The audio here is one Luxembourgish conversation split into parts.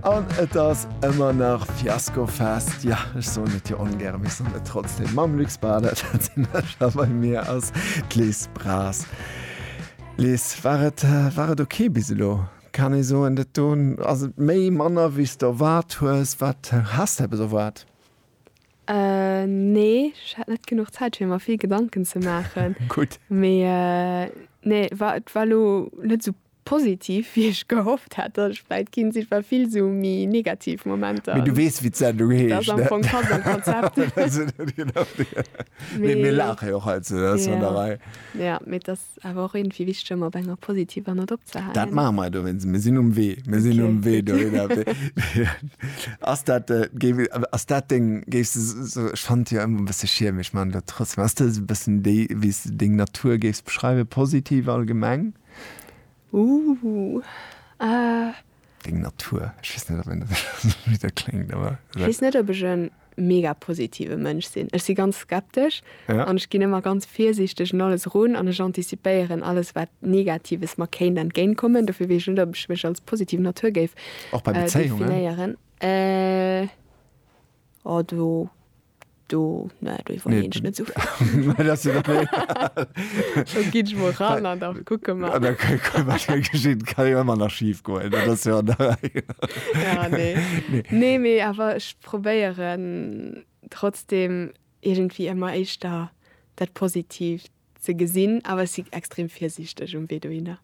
An et ass ëmmer nach Fiaskofest. Jo, ech soen et jo ongäre, mee ech soen et trotzdem. Mam Luc Baader, dat sinn ech, a bei mir ass d'Liz Braz. Liz, war et, war et ok bis elo? Kann ee soen, dat do, ass et méi, manner wéi s de erwaart hues? Wat has de eppes erwaart? Nee, ech hat net genuch Zäit fir mer vill Gedanken ze maachen. Gutt. Mee nee, war, et war elo net esou Positiv wéi ech gehofft hat dass ech vläit ginn sinn, war vill sou méi negativ Momenter. Mee du weess wéi d'Sendung heescht. Dat ass am Fong pass am Konzept. Mee mir laache jo och hei ze der Sonderei. Jo, mee et ass awer och iergendwéi wichteg ëmmer op enger positiver Nott opzehalen. Dat maache mer dowéinst, mir sinn um Wee, mir sinn um Wee dohinner. Ass dat, ass dat deng, géifs de sou, ech fannen et jo ëmmer e bësse schielmeg, maachen dat trotzdem, ass dat esou e bëssen déi wéi s de deng Natur géifs beschreiwen, positiv allgemeng? Ooh ahh. Deng Natur, ech weess net op een dat esou bitter kléngt awer. Ech weess net op ech e mega positive Mënsch sinn. Ech si ganz skeptesch an ech ginn ëmmer ganz virsiichteg un alles erun an ech anticipéieren alles wat Negatives mer kéint entgéint kommen. Dofir weess ech net op ech mech als positiv Natur géif definéieren. Ohh do. Do, ne, do iwwerleeën ech net esou vill. Mä dass du dat net. Do ginn ech mol ran an da kucke mer. An da kucke wat da geschitt. Kann jo ëmmer nach schif goen, dat ass jo an der Rei. Ja, nee. Nee. Nee, mee awer ech probéieren trotzdeem iergendwéi ëmmer éischter dat Positiivt Ze gesinn, awer ech si extrem virsiichteg um Wee dohinner.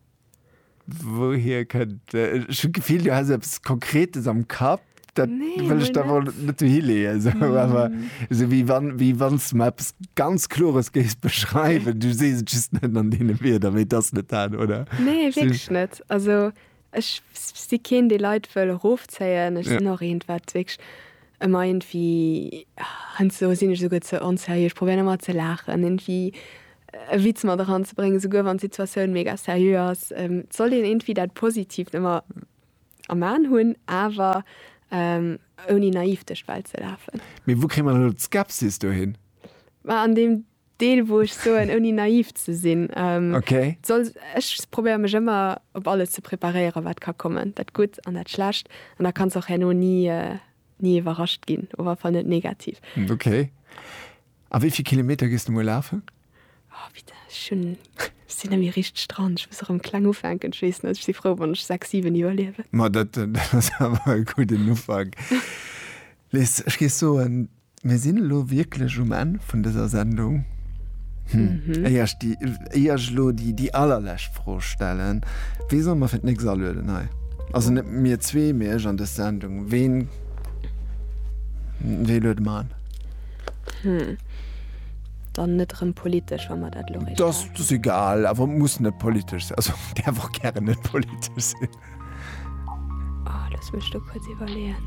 Wouhier kënnt. Ech hunn d'Gefill, du häss eppes Konkretes am Kapp. Dat wëll ech der elo net dohi leeën, esou awer esou wéi wann, wéi wann s de mer eppes ganz Klores géifs beschreiwen. Du sees et just net an deene Wierder, mee et ass net dat, oder? Nee, wierklech net. Also Ech si keen dee Leit wëll erofzéien, ech sinn och eent wat wierklech ëmmer iergendwéi, heiansdo sinn ech esouguer ze onserieux, ech probéieren ëmmer ze laachen, iergendwéi e Witz mat eran ze bréngen, esouguer wann d'Situatioun mega seriö ass. Et sollt een iergendwéi dat Positiivt ëmmer am Aen hunn, awer ouni naiv duerch d'Welt ze lafen. Mee wou kréie mer dann elo d'Skepsis dohin? An deem Deel wou ech soen ouni naiv ze sinn, soll ech probéiere mech ëmmer op alles ze preparéieren wat ka kommen, dat Gutt an dat Schlecht, an da kanns och herno ni ni iwwerrascht ginn, op alle Fall net negativ. Ok. A wéi vill Kilometer gees de muer lafen? Oh bitte, ech hunn, ech sinn ëmmer richteg dran, ech muss erëm kleng ufänken, ech weess net, ech si frou wann ech 6, 7 iwwerliewen. Ma dat ass awer e gudden Ufank. Liz, ech géif soen, Mir sinn elo wierklech um Enn vun dëser Sendung. Éier ech déi, éier ech elo déi, déi allerlescht Fro stellen, Wee soll mer fir d'nächst alueden hei? Also net mir zwee, mee ech an dës Sendung. Ween, wee luede mer an? Dann net erëm politesch, wa mer dat elo erréicht haten. Dat ass egal, awer muss net politesch sinn. Also däerf och gären net politesch sinn. Oh, lass mech do kurz iwwerleeën.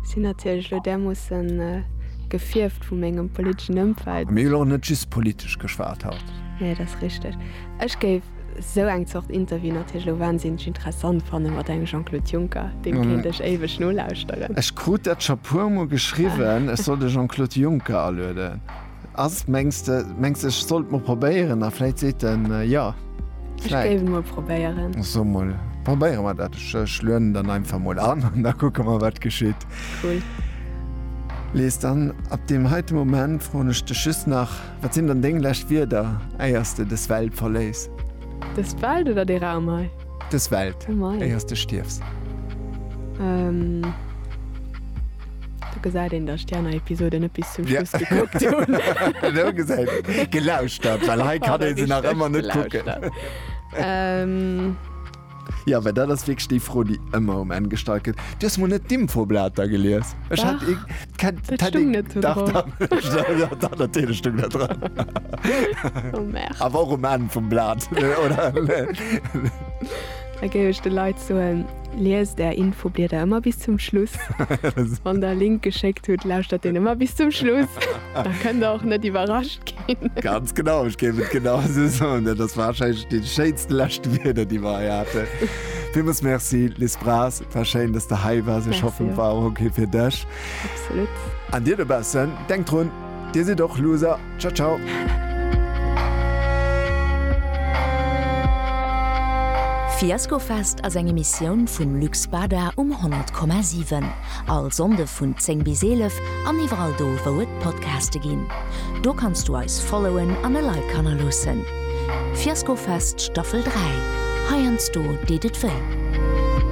Sinn natierlech lo därmoossen äh, gefierft vu mengem politeschen Ëmfeld. Mir hu jo och net just politesch geschwat haut. Nee, dat ass richteg. Ech géif esou eng Zort Interview natierlech lo wahnsinneg interessant fannen, mat engem Jean-Claude Juncker. Deem kéint ech éiweg nolauschteren. Ech krut dat scho puermol geschriwwen, ech soll de Jean-Claude Juncker alueden. Ass mengst de mengst de ech sollt mol probéieren a vläit seet en jo? Ech Vläit. géif et mol probéieren. So mol, probéiere mer dat. Ech ech lueden dann einfach mol an an da kucke mer wat geschitt. Cool. Lies, dann ab deem heite Moment froen ech dech just nach, Wat sinn dann deng lescht Wierder éiers de des Welt verléiss? Des Welt oder dee Raum hei? Des Welt, Oh mei. éiers de stierfs. Do gesäit een, dass ech déi aner Episoden net bis zum Ja. Schluss gekuckt hunn. Lo gesäit een. Gelauschtert, well hei kann ee se nach ëmmer net kucken. Ähm, Ja, well dat ass wierklech déi Fro, déi ëmmer um Enn gestallt gëtt. Du hues mol net d'Infoblater gelies. Ech hat Dach. ik. Kennt Dat stung net do Dach, drop. dach, dach, natürlich stung dat dran. Oh merde. Awer och um Enn vum Blat, oder? Da géif ech de Leit soen, Liest är Infoblieder ëmmer bis zum Schluss. Wann der e Link geschéckt hutt, lauschtert deen ëmmer bis zum Schluss. Da kënnt der och net iwwerrascht ginn. Ganz genau, ech géif et genau esou soen. Dat ass warscheinlech déi schéinste lescht Wieder, déi mer hei haten. Villmools Merci, Liz Braz. War schéin, dass de hei wars. Ech hoffen, et war och ok fir dech. Absolut. An dir dobaussen, denkt drun, Dir sidd och Loser. Ciao, ciao. Fiaskofest ass eng Emissioun vum Luc Bada um 10,7. All Sonnde vun 10 bis 11 an iwwerall do, wou et Podcaste ginn. Do kanns du eis followen an e Like hannerloossen. Fiaskofest Staffel 3, Heiansdo deet et wéi.